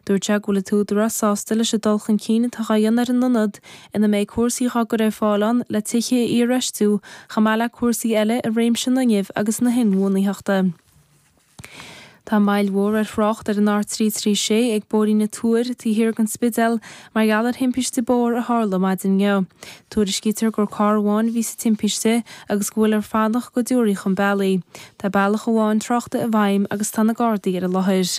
Dúirt sé go bhfuil an tÚdarás sásta leis an dul chun cinn atá dhá dhéanamh ar an ionad ina mbeidh cúrsaí dhá gcur ar fáil ann le tithe a iarfheistiú chomh maith le cúrsaí eile i réimse an fhuinnimh agus na hinbhuanaitheachta. Tá moill mhór ar thrácht ar an R336 ag Bóithrín na Tuair taobh thiar den Spidéal mar gheall ar thimpiste bóthair a tharla maidin inniu. Tuairiscítear gur carr amháin a bhí sa timpiste agus go bhfuiltear ag fanacht go dtiúrfaí chun bealaigh é. Tá bealach amháin tráchta i bhfeidhm agus tá na Gardaí ar an láthair.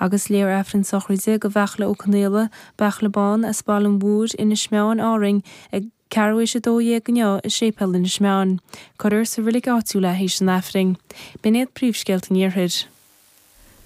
Agus léifear Aifreann sochraide do Bheachla Ó Conaola, Beachla Bán, as Baile an Mhothair, Inis Meáin, Árainn, ag ceathrú th'éis a dó dhéag inniu i Séipéal Inis Meáin. Cuirfear sa reilig áitiúil é th'éis an Aifrinn. B'in iad príomhscéalta an Iarthair.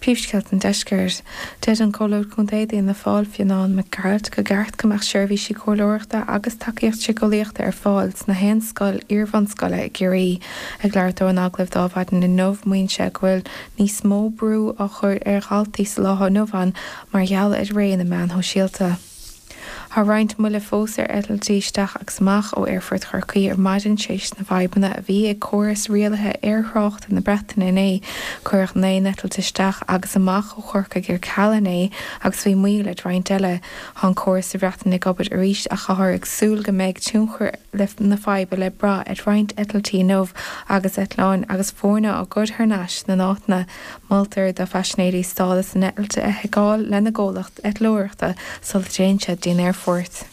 Príomhscéalta an Deiscirt. Deir an Comhairleoir Contae d'Fhianna Fáil, Fionnán Mac Gearailt, gur cheart go mbeadh seirbhísí comhairleoireachta agus tacaíocht siceolaíochta ar fáil sna haon scoil iarbhunscoile i gCiarraí. Ag labhairt dó in agallamh d'Adhmhaidin an lae inniu, maíonn sé go bhfuil Níos mó brú á chur ar dhaltaí sa lá atá inniu ann mar gheall ar ré na meáin shóisialta. Tá roinnt moille fós ar eitiltí isteach agus amach ó aerfort Chorcaí ar maidin tar éis na bhfadhbanna a bhí ag córas rialaithe aerthráchta na Breataine inné. Cuireadh naoi n-eitilt isteach agus amach ó Chorcaigh ar ceal inné agus bhí moill ar roinnt eile. Tá an córas sa Bhreatain ag obair arís ach táthar ag súil go mbeidh tionchar na faidhbe le brath ar roinnt eitiltí inniu agus eitleáin agus foirne á gcur thar n-ais ina n-áiteanna. Moltar do phaisinéirí stádas a n-eitilte a sheiceáil lena gcomhlacht eitleoireachta sula dtéann siad dtí'n aerfort.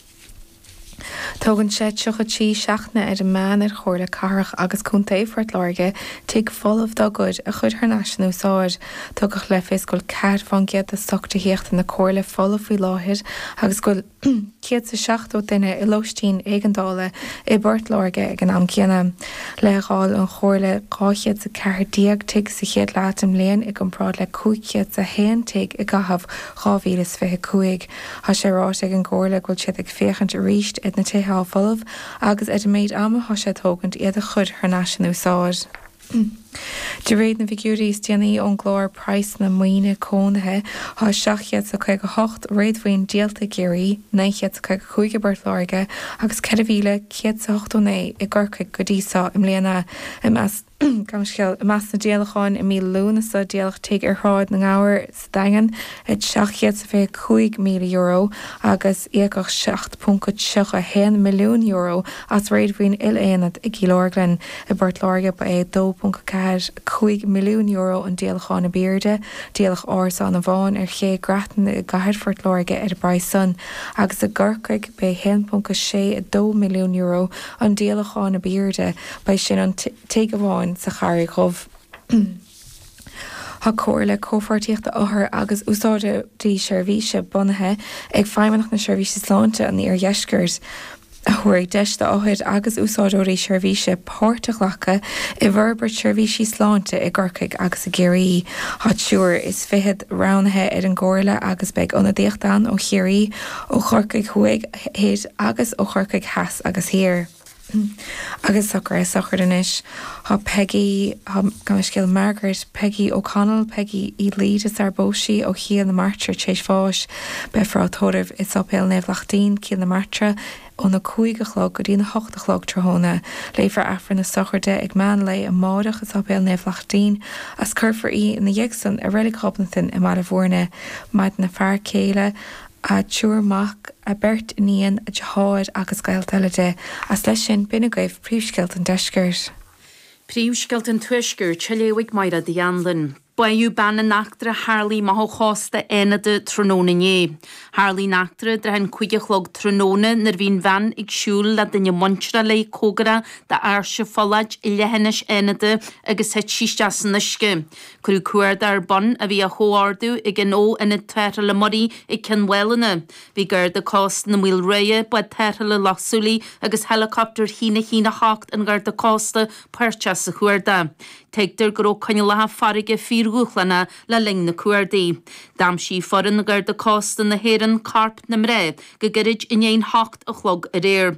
Tógann sé tríocha trí seachtaine ar an meán ar Chomhairle Cathrach agus Contae Phort Láirge tigh folamh dá gcuid a chur thar n-ais in úsáid. Tugadh le fios go bhfuil ceathair fán gcéad de stoc tithíochta na Comhairle folamh faoi láthair agus go bhfuil céad is seachtó duine i lóistín éigeandála i bPort Láirge ag an am céanna. Leithdháil an Chomhairle dhá chéad is a ceathair déag tigh sa chéad leath den mbliain i gcomparáid le cúig chéad is a haon tigh i gcaitheamh 2025. Thá sé ráite ag an gComhairle go bhfuil siad ag féachaint arís ar na tithe atá folamh agus ar an méid ama atá sé ag tógaint iad a chuir thar n-ais in úsáid. De réir na bhfigiúirí is déanaí ón gclár praghsanna maoine cónaithe thá 758 réadmhaoin díolta i gCiarraí, 955 i bPort Láirge agus 4189 i gCorcaigh go dtí so i mbliana. Gabh mo leithscéal, i measc na díolacháin i mí Lúnasa díoladh tigh ar Shráid na nGabhar sa Daingean ar €725,000 agus íocadh €7.31 milliún as réadmhaoin il-aonad i gCill Orglan. I bPort Láirge ba é €2.45 milliún an díolachán ab aoirde. Díoladh Árasáin an Bháin ar Ché Grattan i gCathair Phort Láirge ar an bpraghas san agus i gCorcaigh b'é €1.62 milliún an díolachán ab aoirde, b'é sin an tigh amháin sa Charraig Dhubh. Tá Comhairle Comhpháirtíochta Othar agus Úsáideoirí Seirbhíse bunaithe ag Feidhmeannacht na Seirbhíse Sláinte an Iardheiscirt a thabharfaidh deis d'othair agus úsáideoirí seirbhíse páirt a ghlacadh i bhforbairt seirbhísí sláinte i gCorcaigh agus i gCiarraí. Tá triúr is fichead roghnaithe ar an gComhairle agus beidh ionadaíocht ann ó Chiarraí, ó Chorcaigh Thuaidh, Thoir agus ó Chorcaigh Theas agus Thiar. Agus socruithe sochraide anois. Thá Peigí, thá, gabh mo leithscéal, Margaret, Peigí O'Connell, Peigí Ní Laoire sarar phós sí ó Chill na Martra t'réis bháis. Beifear á tórramh i Sáipéal Naomh Lachtín, Cill na Martra, óna cúig a chlog go dtí na hocht a chlog tráthnóna. Léifear Aifreann na sochraide ag meán lae amáireach i Sáipéal Naomh Lachtín agus cuirfear í ina dhiaidh san i Reilig Ghobnatan i mBaile Mhúirne. Maireann a fear céile, a triúr mac, a beirt iníon, a deartháir agus gaolta eile di. Is leis sin, b'in agaibh príomhscéalta an Deiscirt. Príomhscéalta an Tuaiscirt, á léamh ag Máire Uí Annluain. Báitheadh bean in eachtra a tharlaigh amach ó chósta Fhánada tráthnóna inné. Tharlaigh an eachtra i dtrátha an cúig a chlog tráthnóna nuair a bhí an bhean ag siúl le duine muinteartha léi comhgarach d'Áirse Phollaid i leithinis Fhánada agus thit sí isteach san uisce. Cuireadh cuardach ar bun a bhí á chomhordú ag an ó Ionad Tarrthála Muirí ag Cionn Mhálanna. Bhí Garda Cósta na Maoile Ruaidhe, Bád Tarrthála Loch Súilí agus héileacaptar a haon a haon a 8 an Gharda Cósta páirteach sa chuardach. Tuigtear go raibh coinníollacha farraige fíordhúshlánach le linn na cuardaí. D'aimsigh foireann Gharda Cósta na hÉireann corp na mná go gairid i ndiaidh 8 a chlog aréir.